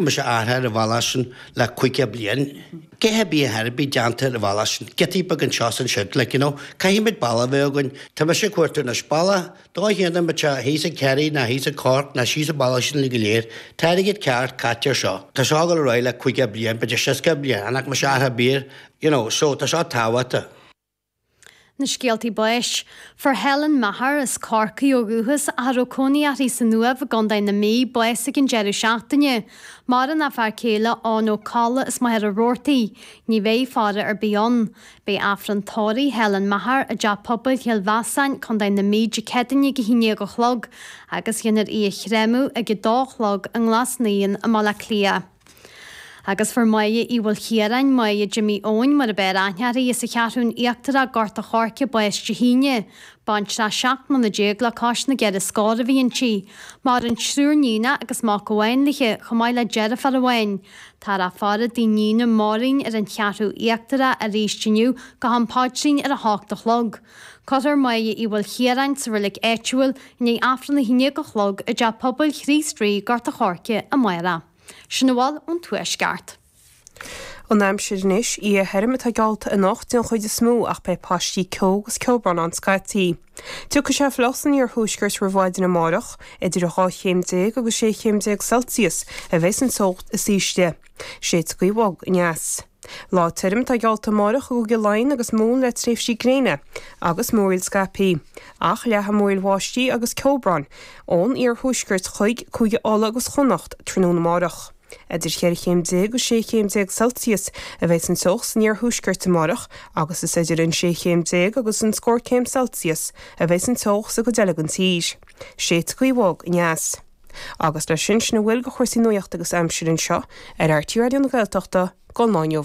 Mise ag amharc ar an bhalla sin le caoga bliain. Cé a bhí a dhath ar bith déanta ar an bhalla sin? Giotaí beag anseo is ansiúd, like, you know. Caithfimid balla a bheith againn. Tá mise ag cuartú anois balla. Dá ndéanfadh muid seo, thíos i Kerry ná thíos i Cork ná thíos i Ballyshannon go léir, tá airgead ceart caite ar seo. Tá seo ag gabháil ar aghaidh le caoga bliain, b'fhéidir seasca bliain, an ach mise a dhath ar bith, you know. So, tá seo tábhachtach. Na scéaltaí báis. Fuair Helen Maher, as Corcaigh ó dhúchas ach a raibh cónaí uirthi san Uaimh i gContae na Mí, bás ag an deireadh seachtaine. Maireann a fear céile Eoin Ó Colla as Machaire Rabhartaigh. Ní bheidh faire ar bith ann. Beidh Aifreann tórraimh Helen Maher i dTeach Pobail Chill Mheasáin, Contae na Mí, Dé Céadaoine ag 11 a chlog agus dhéanfar í a chréamadh ag 2 a chlog i nGlas Naíon i mBaile Átha Cliath. Agus fuair Máire Uí Mhaoil Chiaráin, Máire Jimí Eoghain, mar ab fhearr aithne uirthi, as an Cheathrúin Íochtarach, Gort a' Choirce, bás Dé hAoine. Baintreach seacht mbliana déag le cois na gceithre scór a bhí inti. Maireann triúr níonach agus mac amháin léi, chomh maith le deirfiúr amháin. Táthar á faire i dtigh a níona Máirín ar an Cheathrú Íochtarach aríst inniu go ham paidrín ar a hocht a chlog. Cuirfear Máire Uí Mhaoil Chiaráin sa reilig áitiúil i ndiaidh Aifreann a haon déag a chlog i dTeach Pobail Chríost Rí, Gort an Choirce, amárach. Sin a bhfuil ón Tuaisceart. An aimsir anois, oíche thirim atá geallta anocht den chuid is mó ach beidh paistí ceo agus ceobhrán ann scaití. Tiocfaidh sé fliuch san iarthuaisceart roimh mhaidin amárach. Idir 12 chéim agus 16 chéim Celsius a bheidh san teocht is ísle. Séidfidh gaoth bhog aneas. Lá tirim atá geallta amárach i gCúige Laighean agus Mumhan le tréimhsí gréine agus múraíl scaipthe, ach leathfaidh múraíl bháistí agus ceobráin ón iarthuaisceart chuig Cúige Uladh agus Chonnacht tráthnóna amárach. Idir cheithre chéim déag agus sé chéim déag Celsius a bheidh an teocht san iarthuaisceart amárach agus is idir an sé chéim déag agus an scór céim Celsius a bheidh an teocht sa gcuid eile den tír. Séidfidh gaoth bhog aneas. Agus leis sin, sin a bhfuil de chúrsaí nuaíochta agus aimsire anseo ar RTÉ Raidió na Gaeltachta don lá inniu.